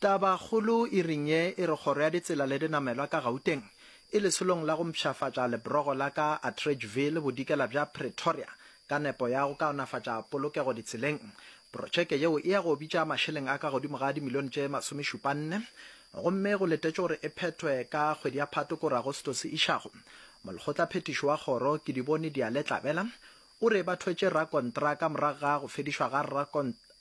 Tabakgolo iring ye e re Kgoro ya Ditsela le Dinamelwa ka Gauteng e lesolong la go mpshafatša lebrogo la ka Atteridgeville bodikela bja Pretoria ka nepo ya go kaonafatša polokego ditseleng. Protšeke yeo e ya go bitša mašeleng a ka godimo ga dimilione tše masomešupanne gomme go letetšwe gore e phethwe ka kgwedi ya Phatwe kore Agostose e išago. Molekgotlaphethiši wa Kgoro, Kedibone Dialetlabela, o re ba thwetše rakontraka morago ga go fedišwa ga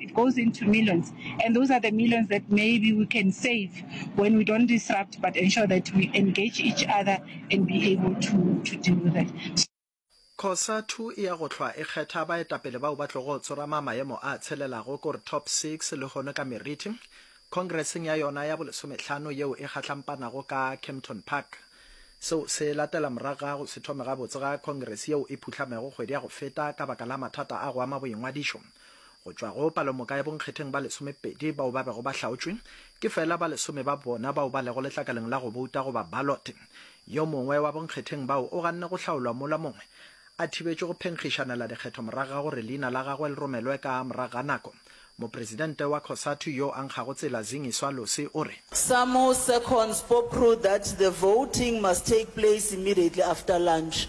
It goes into millions and those are the millions that maybe we can save when we don't disrupt but ensure that we engage each other and be able to to deal with it. Cosatu e ya go hlwa e kgetha baetapele bao ba tlogo tsorama maemo a tshelelago ko re top six lehono ka meriti khongreseng ya yona ya bolesomehlano yeo e gahlampanago ka Kempton Park. Seo se latela morago ga go se thome gabotse ga khongrese yeo e phuhlamego kgwedi ya go feta ka baka la mathata a go ama boingwadišo. Go tšwa go palomoka ya bonkgetheng ba lesomepedi bao ba bego ba hlaotšwe, ke feela ba lesome ba bona bao ba lego letlakaleng la go bouta goba ballot. Yo mongwe wa bonkgetheng bao o ganne go hlaolwa mola mongwe a thibetšwe go phenkgišanela dikgetho morago ga gore leina la gagwe le romelwe ka morago ga nako. Mopresidente wa Cosatu yo a nkgago tsela Zingiswa Losi o re. Some seconds bob ruled that the voting must take place immediately after lunch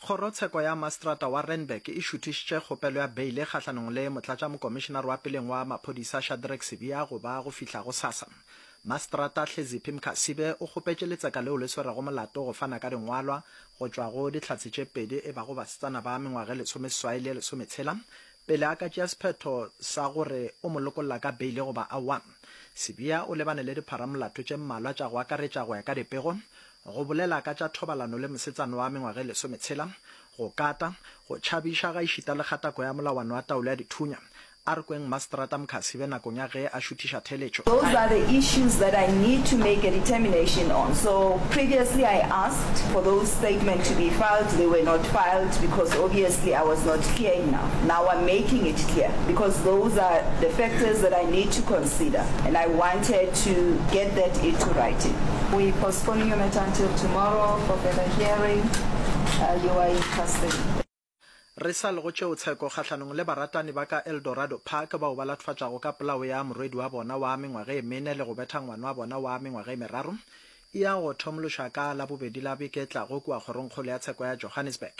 Kgorotsheko ya Maseterata wa Randburg e šuthišitše kgopelo ya beile kgahlanong le Motlatšamokomišenare wa peleng wa Maphodisa Shadrack Sibiya go ba go fihla gosasa. Maseterata Hleziphi Mkhasibe o kgopetše letseka leo le swerego molato go fana ka dingwalwa go tšwa go Dihlatse tše pedi e bago basetsana ba mengwaga e lesomeseswai le e lesometshela pele a ka tšea sephetho sa gore o mo lokolla ka beile goba aowa. Sibiya o lebane le dipharamolato tše mmalwa tša go akaretša go ya ka dipego, Go bolela ka tša thobalano le mosetsana wa mengwaga e lesometshela, go kata, go tšhabiša gaešita le kgatako ya molawana wa taolo ya dithunya, a re kweng Maseterata Mkhasibe nakong ya ge a šuthiša theeletšo. Those are the issues that I need to make a determination on. So previously I asked for those statement to be filed, they were not filed because obviously I was not clear enough. Now I'm making it clear because those are the factors that I need to. Cedar and I wanted to get that into writing. We postponing your matter until tomorrow for further hearing. Uh, you are in custody. Re sa lego tšeo tsheko kgahlanong le baratani ba ka Eldorado Park bao ba latfatšago ka polao ya morwedi wa bona wa mengwaga e mene le go betha ngwana wa bona wa mengwaga e meraro e ya go thomološwa ka Labobedi la beke e tlago kua kgorongkgolo ya tsheko ya Johannesburg.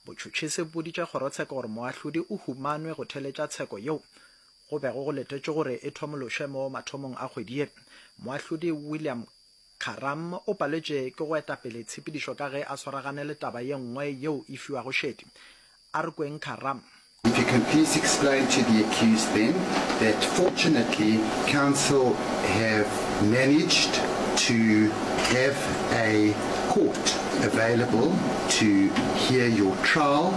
Botšhotšhisi bo boditše kgorotsheko gore moahlodi o humanwe go theletša tsheko yeo Go bego go letetšwe gore e thomološwe mo mathomong a kgwedi ye, Moahlodi William Karam o paletše ke go eta pele tshepedišo ka ge a swaragane le taba ye nngwe yeo e fiwago šedi. A re kweng Karam. If you can please explain to the accused then that fortunately counsel have managed to have a court available to hear your trial.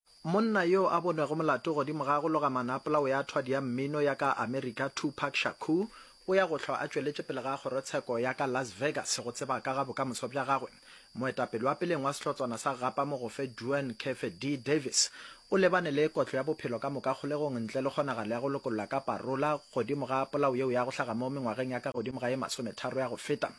Monna yo a bonego molato godimo ga go loga manapola o ya thwadi ya mmino ya ka Amerika Tupac Shakur o ya go hlwa a tšweletše pele ga kgorotsheko ya ka Las Vegas go tseba ka ga bokamoso bja gagwe. Moetapele wa peleng wa sehlotswana sa Gapa Mogofe Duane Khefe Dee Davis o lebane le kotlo ya bophelo ka moka kgolegong ntle le kgonagalo ya go lokolla ka parola godimo ga polao yeo ya go hlaga mo mengwageng ya ka godimo ga ye masometharo ya go feta.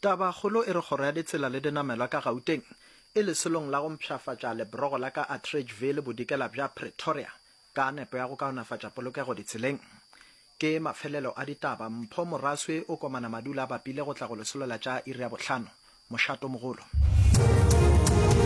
Tabakgolo e re Kgoro ya Ditsela le Dinamelwa ka Gauteng e lesolong la go mpshafatša lebrogo la ka Atteridgeville bodikela bja Pretoria ka nepo ya go kaonafatša polokego ditseleng. Ke mafelelo a ditaba. Mpho Moraswe o komana Madula a bapile go tla go lesolola tša iri ya bohlano. Mošato mogolo.